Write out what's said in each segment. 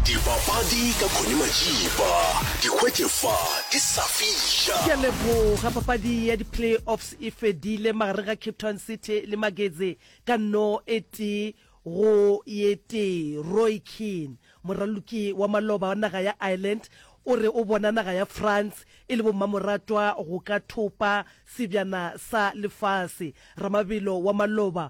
Dipapadi ka Connie Majiba, di hwetše fa di sa fihla. Ke a leboga. Papadi ya di-playoffs e fedile magareng ga Cape Town City le Magetse ka no e tee go ye tee. Roy Keane, moraloki wa maloba wa naga ya Ireland, o re o bona naga ya France e le bommamoratwa go ka thopa sebjana sa lefase. Ramabelo wa maloba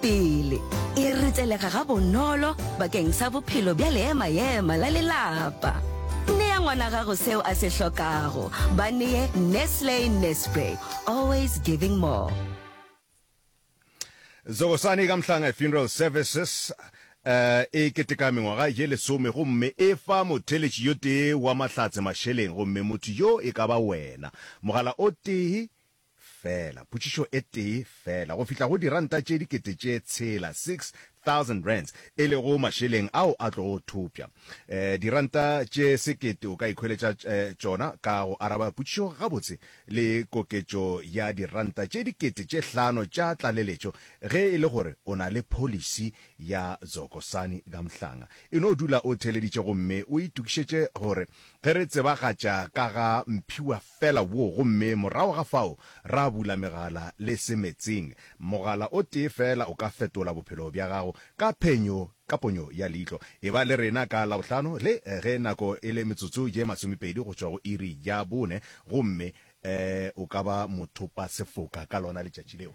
pele e ritselega gabonolo bakeng sa bophelo bja leema-ema la lelapa. Nea ngwana gago seo a se hlokago. Ba neye Nestle Nespray, always giving more. Zogosani ka Mhlanga Funeral Services eh, e keteka mengwaga ye lesome gomme e fa motheletši yo tee wa Mahlatse mašeleng gomme motho yo e ka ba wena. Mogala o tee Fela, potšišo e tee fela, go fihla go diranta tše dikete tše tshela, six thousand rands, e lego mašeleng ao a tlogo thopša. Eh, diranta tše sekete o ka ikhweletša eh, tšona ka go araba potšišo gabotse le koketšo ya diranta tše dikete tše hlano tša tlaleletšo ge e le gore o na le pholisi ya Dzokosani ka Mhlanga. E no dula o theeleditše gomme o itokišetše gore ge re tsebagatša ka ga Mphiwa Fela wo, gomme morago ga fao ra bula megala le se meetseng. Mogala o tee feela o ka fetola bophelo bja gago ka phenyo, ka ponyo ya leihlo. Eba le rena ka Labohlano, le ge nako e le metsotso ye masomepedi go tšwa go iri ya bone, gomme o ka ba mothopasefoka ka lona letšatši leo.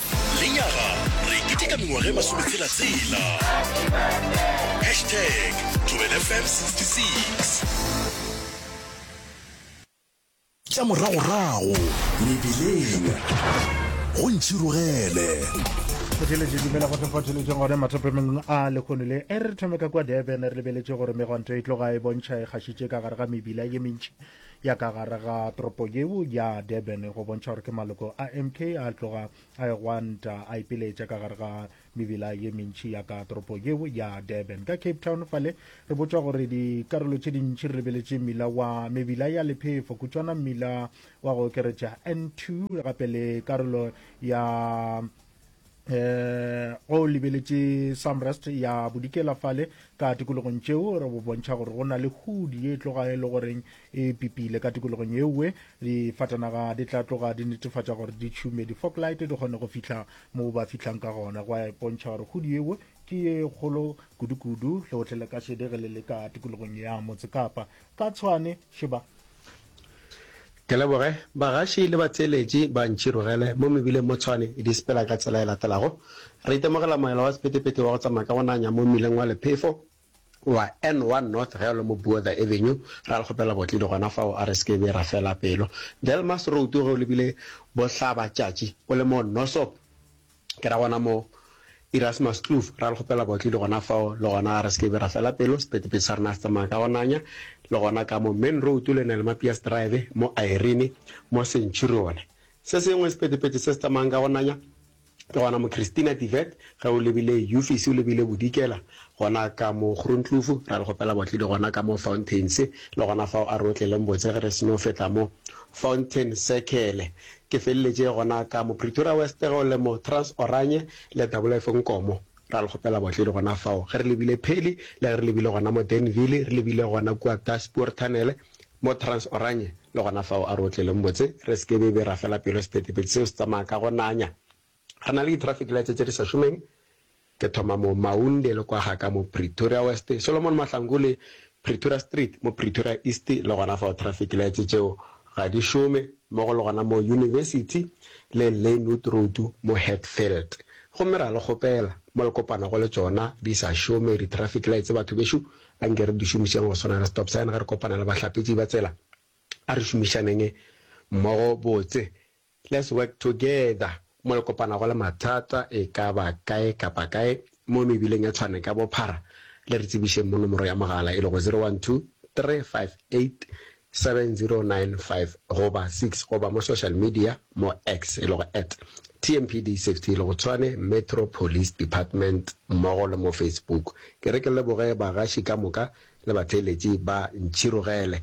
Lenyaga re keteka mengwaga e masometshela tsela. Hashtag Thobela FM 66. Tša moragorago mebileng go ntšhirogele. Photheletše dumela go sephotheletšeng gone mathopemeng a lekgono le e re thome ka kwa durban re lebeletše gore megwanto e tloga e bontšha e kgašitše ka gare ga mebila ye mentši ya ka gare ga toropo yeo ya durban go bontšha gore ke maloko a mk a tloga a e gwanta a ipiletša ka gare ga mebila ye mentši ya ka toropo yeo ya durban ka cape town fale re botšwa gore dikarolo tše dintši re lebeletše mmila wa mebila ya lephefo kutšwana mmila wa go okeretša n2 gape le karolo ya eh go lebeletše samrest ya bodikela fale ka tikologong tšeo re bo bontšha gore go na le hudi ye e tloga e le goreng e pipile ka tikologong ewe difatanaga di tla tloga di netefatša gore di tšhume di-foglight di kgone go fihla moo ba fihlang ka gona go a bontšha gore hudi ewe ke ye kgolo kudu-kudu le gotlhe le ka šedegele le ka tikologong ya motse kapa ka tshwane šeba Ke leboge bagaši le batheeletši ba Ntšhirogele mo Mebileng mo Tshwane di Sepela ka tsela e latelago. Re itemogela moela wa sepetepete wa go tsamaya ka go nanya mo mmileng wa lephefo wa N1 North ge o le mo Buother Avenue. Ra le kgopela botledi gona fao a re seke be ra fela pelo. Delmas Road ge o lebile Bohlabatšatši o le mo Nossop Ke ra gona moo, Erasmus Kloof, ra le kgopela baotledi gona fao, le gona re se ke be ra fela pelo, sephetephete sa rena se tsamaya ka go nanya, le gona ka mo Main Road, le na le Mapias Drive, mo Irene, mo Centurion. Se sengwe sephetephete se se tsamayang ka go nanya, ke gona mo Christina de Wet, ge o lebile Euphesie o lebile Bodikela, gona ka mo Groenkloof, ra le kgopela baotledi gona ka mo Fountains, le gona fao a re otleleng botse ge re se no feta mo Fountain Circle. Ke feleletše gona ka mo Pretoria West ge o le mo Trans Oranje le Doublelife Nkomo. Ra le kgopela baotledi gona fao ge re lebile Pheli le ge re lebile gona mo Denville, re lebile gona kua ka Spoor Tunnel mo Trans Oranje le gona fao. A re otleleng botse re se ke be be ra fela pelo, sephethephethe seo se tsamaya ka go nanya. Re na le di-traffic lights tse di sa šomeng, ke thoma mo Maunde le kwa ga ka mo Pretoria West, Solomon Mahlangu le Pretoria Street mo Pretoria East le gona fao traffic lights tšeo ga di šome, mmogo le gona mo University le Lynwood Road mo Hatfield. Gomme ra le kgopela, mo le kopanago le tšona di sa šome di-traffic lights, batho bešo, anke re di šomišeng go swana le stop sign ge re kopana le bahlapetši ba tsela. A re šomišaneng mmogo botse. Let's work together mo le kopanago le mathata e ka ba kae kapa kae mo mebileng ya Tshwane ka bophara, le re tsebišeng mo nomoro ya mogala e lego 0123587095 goba 6 goba mo social media mo X e lego at TMPD Safety e lego Tshwane Metro Police Department mmogo le mo Facebook. Ke re ke leboge bagaši ka moka le batheeletši ba Ntšhirogele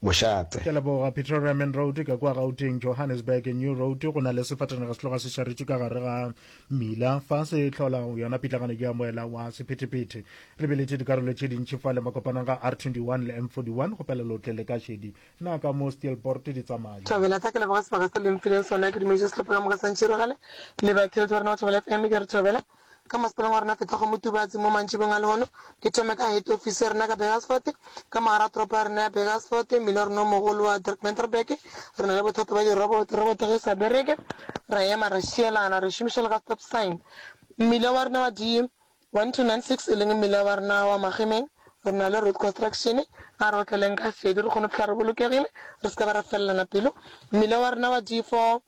mošate. Ke a leboga. Pretoria Main Road ka kua Gauteng, Johannesburg New Road, go na le sefatanaga se tloga se šaretše ka gare ga mmila fa se hlola yona pitlagano ya moela wa sephethephethe. Re biletše dikarolo tše dintši fa le makopanong ga R21 le M41 go pela lotle le ka šedi. Na ka mo Steelpoort di tsamaya? Thobela tla ke leboga sebaka se le mphileng sona ke dumeditše sehlopha ka moka sa ntšhiragale le ba kiltware na go thobela fm ke re thobela ka masepaleng wa rena feta go Motubatsi mo mantšibong a lehono, ke thome ka head ofisi ya rena ka Burgersfort, ka mogara ga toropo ya rena ya Burgersfort, mmileorena o mogolo wa Dirk-Menterberg, re na le bothata ba diroboto, roboto ge e sa bereke, ra ema ra šielana, re šomiša le ka stop sign. Mmile wa rena wa di 1296 e leng mmile wa rena wa Magemeng, re na le road construction, a re otleleng ka sedu re kgone go fihla re bolokegile, re se ka ba ra felelana pelo, mmile wa rena wa di 4.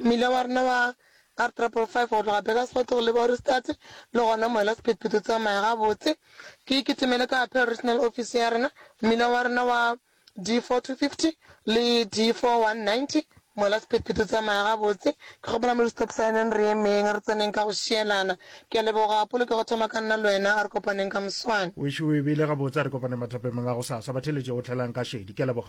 Mmila wa rena wa R3.5 go tloga Burgersfort go leba Ohrigstadt le gona moela sephethephethe o tsamaya gabotse. Ke iketemele ka Appeal Regional Office ya rena, mmila wa rena wa D4-250 le D4-190, moela sephethephethe o tsamaya gabotse. Ke kgopela mo di-stop sign-eng re emeng, re tseneng ka go šielana. Ke a leboga, polokego e thoma ka nna le wena, a re kopaneng ka moswane. Wešo o e beile gabotse, a re kopaneng mathapemeng a gosasa, ba theletše go hlelang ka šedi. Ke a leboga.